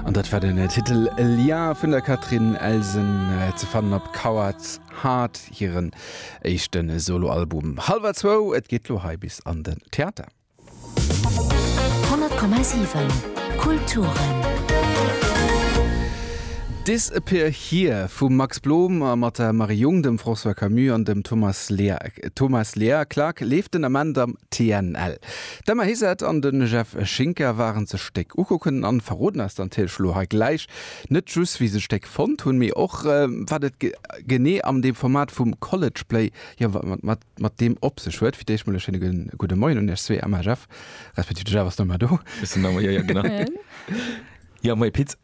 An dat war den Titel Lien vun der Catherine Elsen, ze fannen op Coward Heart, hiren éischte Soloalbum. Hallwer zwou, et geet lo hei bis an den Theater. 100,7 Kulturen. Disappear Here vum Max Blom a mat der Marie Jung, dem François Camus an dem Thomas Lear. Thomas Lear, Clark, leeft den Ament am. TNL. D'Emma Hizard an de Jeff Schinker waren sech d'Stéck ukucken an verroden eis dann natierlech elo hei gläich net just wéi se d'Stéck fonnt hunn, mee och wat et genee am deem Format vum College Play, jo wat et mat deem op sech huet. Fir d'éischt mol e schéine gudde Moien un iech zwee, Emma, Jeff, respektiv de Jeff ass net méi do. Ech sinn nach mei hei, jo genau. Jo, moie Pit.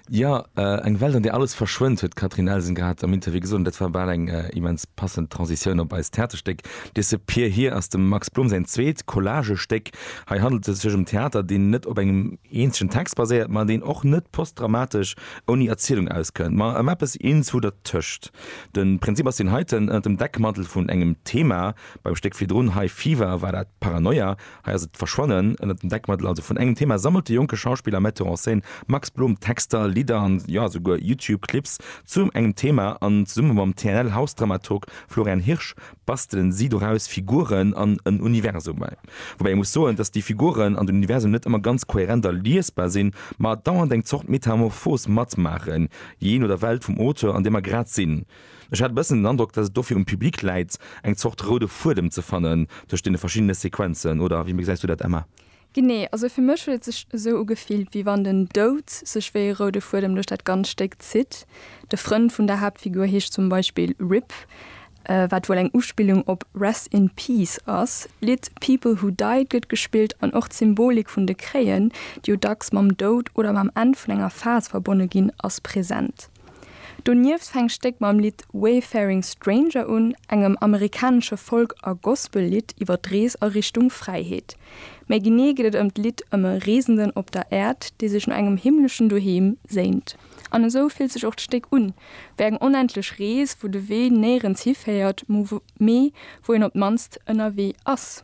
Jo, eng Welt an där alles verschwënnt, huet d'Catherine Elsen grad am Interview gesot, an dat war bal eng immens passend Transitioun op eist Theaterstéck Dese Pier hir ass dem Max Blom säin zweet Collagestéck. Hei handelt et sech ëm Theater, deen net op engem eenzegen Text baséiert, ma deen och net postdramatesch ouni Erzielung auskënnt, ma ëm eppes eenzewu dertëscht. De Prinzip ass deen heiten, Ënnert dem Deckmantel vun engem Thema, beim Stéck virdrun High Fever war dat Paranoia, Hei ass et d'Verschwannen ënnert dem Deckmantel also vun engem Thema, sammelt de jonke Schauspiller a Metteur en scène Max Blum Texter, Lidder an jo esouguer YouTube-Clips zum engem Thema an zesumme mam TNL-Hausdramaturg Florian Hirsch bastelen si doraus Figuren an en Universum. Woubäi ee muss soen, datt déi Figuren an den Universum net ëmmer ganz kohärent a liesbar sinn, ma dauernd eng Zort Metamorphos matmaachen, jee no der Welt vum Auteur an där mer grad sinn. Ech hat e bëssen den Androck, datt et dofir um Public läit, eng Zort roude Fuedem ze fannen tëscht deene verschiddene Sequenzen. Oder wéi gesäis du dat, Emma? Genee. Also fir mech huet et sech esou ugefillt, wéi wann den Doud sech wéi e roude Fuedem duerch dat ganzt Stéck zitt. De Frënd vun der Haaptfigur heescht zum Beispill Rip, wat wuel eng Uspillung op Rest in Peace ass. D'Lidd People Who Died gëtt gespillt an och d'Symbolik vun de Kréien, déi jo dacks mam Doud oder mam Enn vun enger Phas verbonne ginn, ass present. Donieft fänkt d'Stéck mam Lidd Wayfaring Stranger un, engem amerikanesche Folk a Gospel-Lidd iwwer d'Rees a Richtung Fräiheet. Méi genee geet et ëm d'Lidd ëm e Reesenden op der Äerd, dee sech no engem himmleschen Doheem séint. An esou fillt sech och d'Stéck un, wéi eng onendlech Rees, wou de Wee néierens hiféiert, mee wou een op d'mannst ënnerwee ass.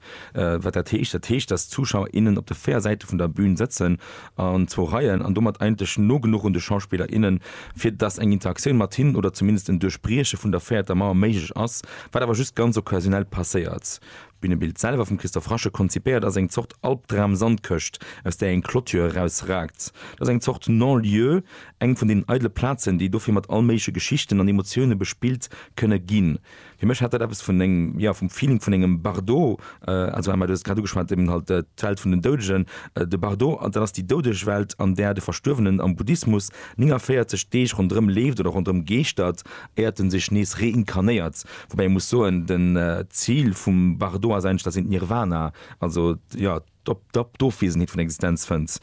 Wat dat heescht? Dat heescht, dass d'Zuschauer, innen op de véier Säite vun der Bün sëtzen an zwou Reien an domat eigentlech no genuch un de Schauspiller, innen, fir dass eng Interaktioun mat hinnen oder zumindest en Duerchbrieche vun der véierter Mauer méiglech ass, wat awer just ganz occasionell passéiert. D'Bünebild selwer, vum Christophe Rasche konzipéiert, ass eng Zort Albdram-Sandkëscht, aus där eng Clôture erausraakt. Dat ass eng Zort Non-Lieu, eng vun deenen eidele Plazen, déi dofir mat all méigleche Geschichten an Emotioune bespillt kënne ginn. Fir mech hat dat eppes vun engem, jo, vum Feeling vun engem Bardo, also Emma, du hues et grad ugeschwat, eben halt d'Welt vun den Doudegen, de Bardo, an dat ass déi doudeg Welt, an där de Verstuerwenen am Buddhismus 49 Deeg ronderëm leeft oder ronderëm geeschtert, éiert en sech nees reinkarnéiert. Woubäi ee muss soen, den Zil vum Bardo ass eigentlech, dat ass een d'Nirvana, also, jo, d'Ofwesenheet vun Existenz fënnt,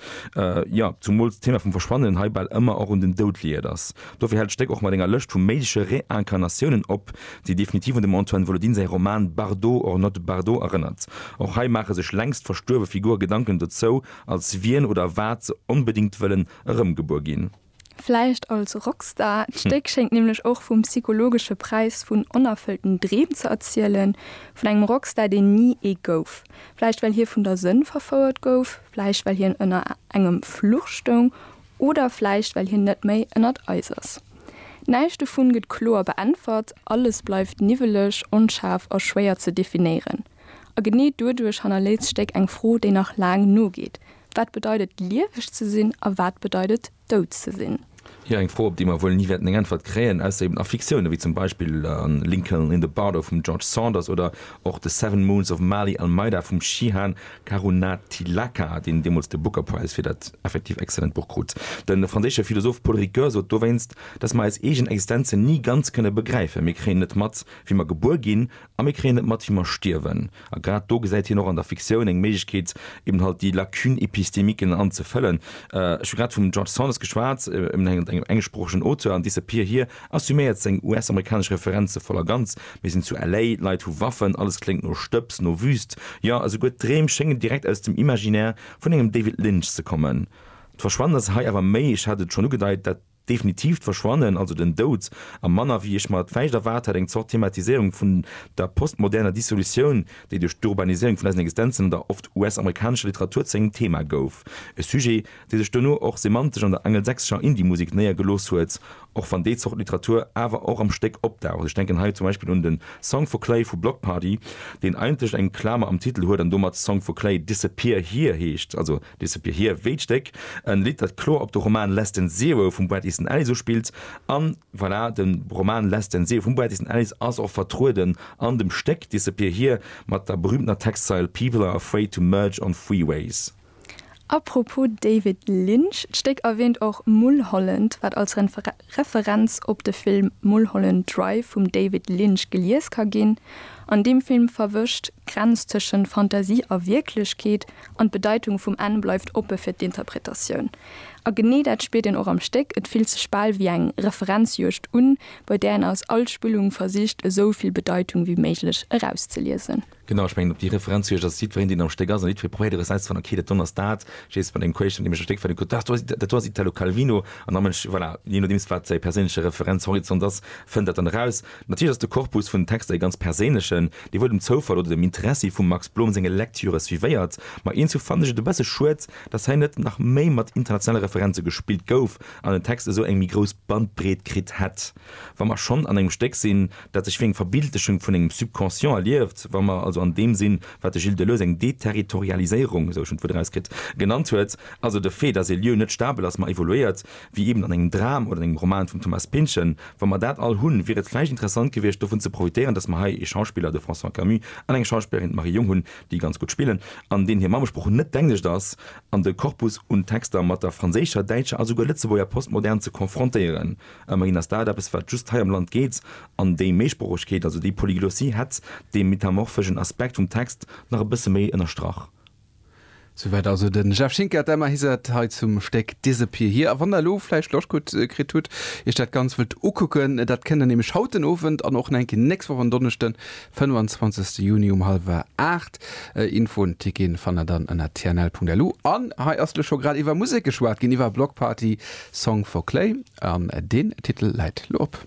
jo, zumools d'Thema vum Verschwannen hei bal ëmmer och un den Doud liiert ass. Dofir hält d'Stéck och mat enger Lëscht vu méigleche Reincarnatiounen op, déi definitiv un dem Antoine Volodin säi Roman Bardot or not Bardot erënnert. Och hei maache sech längst verstuerwe Figure Gedanken dozou, als wien oder wat se onbedéngt wëllen erëmgebuer ginn. Vläicht als Rockstar, d'Stéck schéngt nämlech och vum psychologesche Präis vun onerfëllten Dreem ze erzielen, vun engem Rockstar, deen ni ee gouf. Vläicht well hie vun der Sënn verfouert gouf, vläicht well hien ënner engem Fluch stoung oder vläicht well hien net méi ënnert eis ass. Näischt dovun gëtt kloer beäntwert, alles bleift niwweleg, onschaarf a schwéier ze definéieren. A genee doduerch hannerléisst d'Stéck eng Fro, déi nach laang nogeet, Wat bedeit et, lieweg ze sinn a wat bedeit et, dout ze sinn? Jo, eng Fro, op déi mer wuel ni wäerten eng Äntwert kréien, ausser eben a Fiktioune wéi zum Beispill Lincoln in the Bardo vum George Saunders oder och The Seven Moons of Maali Almeida vum Shihan Karunatilaka, deen deemools de Booker Prize fir dat effektiv excellent Buch krut. De franséische Philosoph Paul Ricoeur sot dowéinst, dass mer eis eegen Existenzen ni ganz kënne begräifen, Mir kréien net mat, wéi mer gebuer ginn A mir kréien et mat, wéi mer stierwen. A grad do gesäit hien och an der Fiktioun eng Méiglechkeet, eben halt déi Lacunes épistémiques an ze fëllen. Ech hu grad vum George Saunders geschwat, eben engem englschsproochegen Auteur an Disappear Here assuméiert seng US-amerikanesch Referenze voll a ganz, Mir sinn zu LA, d'Leit hu Waffen, alles kléngt no Stëbs, no Wüüst, jo, esouguer d'Dreem schéngen direkt aus dem Imaginaire vun engem David Lynch ze kommen. D'Verschwannen ass hei awer méi, ech hat et schonn ugedeit, dat. definitiivt Verschwannen, also den Doud, a manner wéi ech mer et vläicht erwaart hätt, eng Zort Thematiséierung vun der postmoderner Dissolutioun, déi duerch d'Urbaniséierung vun eisen Existenzen an der oft US-amerikanescher Literatur zu engem Thema gouf. E Sujet, dee sech duerno och semantesch an der angelsächsescher Indie-Musek néiergelooss huet, och wann déi Zort Literatur awer och am Stéck opdaucht. Ech denken hei zum Beispill un de Song for Clay vu Bloc Party, deen eigentlech eng Klamer am Titel huet an domat Song for Clay Disappear Here heescht, also Disappear Here, Wéi d'Stéck, en Lidd dat kloer op de Roman Less Than Zero vum Bret Easton Ellis uspillt. An voilà, den Roman Less Than Zero vum Bret Easton Ellis ass och vertrueden an dem Stéck Disappear Here mat der berühmtener Textzeil People are afraid to merge on freeways. Apropos David Lynch, d'Stéck erwähnt och Mulholland, wat als Referenz op de Film Mulholland Drive vum David Lynch gelies ka ginn. An deem Film verwëscht d'Grenz tëschent Fantasie a Wierklechkeet an d'Bedeitung vum Enn bleift oppe fir d'Interpretatioun. A genee dat spiert een och am Stéck, et fillt sech bal wéi eng Referenzjuegd un, bei där een aus all Spillung versicht esou vill Bedeitung wéi méiglech erauszeliesen. Genau, ech mengen op déi Referenz hu ech, dass jiddwereen deen am Stéck ass an jiddweree probéiert erauszefannen, okay dat do ass dat, jees mat engem Queeschen deem ech e Stéck vun dem kuckt, dat do ass dat do ass Italo Calvino an da mënsch voilà, jee nodeems wat säi perséinleche Referenzhorizont ass, fënnt dat dann eraus. Natierlech ass de Korpus vun den Texter ee ganz perséinlechen, dee wuel dem Zoufall oder dem Interessi vum Max Blom senge Lektüre suivéiert. Ma eens du fanne ech et e bësse schued, dass hei net nach méi mat internationale Referenze gespillt gouf an den Text esou eng méi grouss Bandbreet kritt hätt. Wa mer schonn an engem Stéck sinn, dat sech wéi eng Verbildechung vun engem Subconscient erlieft, wa mer also an deem sinn, wat de Gilles Deleuze eng Deterritorialiséierung, esou ech en d'Wuert erauskritt, genannt huet, also de Fait, dass ee Lieu net stabel ass, ma evoluéiert, wéi eben an engem Dram oder an engem Roman vum Thomas Pynchon, wa mer dat all hunn, wier et vläicht interessant gewiescht, dovun ze profitieren, dass mer hei ee Schauspiller, de François Camus, an eng Schauspillerin, d'Marie Jung, hunn, déi ganz gutt spillen an deenen hir Mammesprooch net d'Englischt ass, an de Korpus un Texter mat der franséischer, däitscher a souguer lëtzebuerger Postmodern ze konfrontéieren. Ëmmerhin ass dat eppes, wat just hei am Land geet, an déi Méisproochegkeet, also déi Polyglossie, hätt dee metamorphegen Aspekt vum Text nach e bësse méi ënnerstrach. Souwäit also de Jeff Schinker, d'Emma Iset, hei zum Stéck Disappear Here. A wann der elo vläicht Loscht kritt hutt, iech dat Ganzt wëllt ukucken, dat kënnt der nämlech haut den Owend an och nach eng Kéier nächst Woch en Donneschden, 25. Juni um hallwer aacht. Infoen, Ticketen fannt der dann ënner tnl.lu. An hei ass lech scho grad iwwer Musek geschwat ginn, iwwer Bloc Party Song for Clay an deen Titel läit lo op.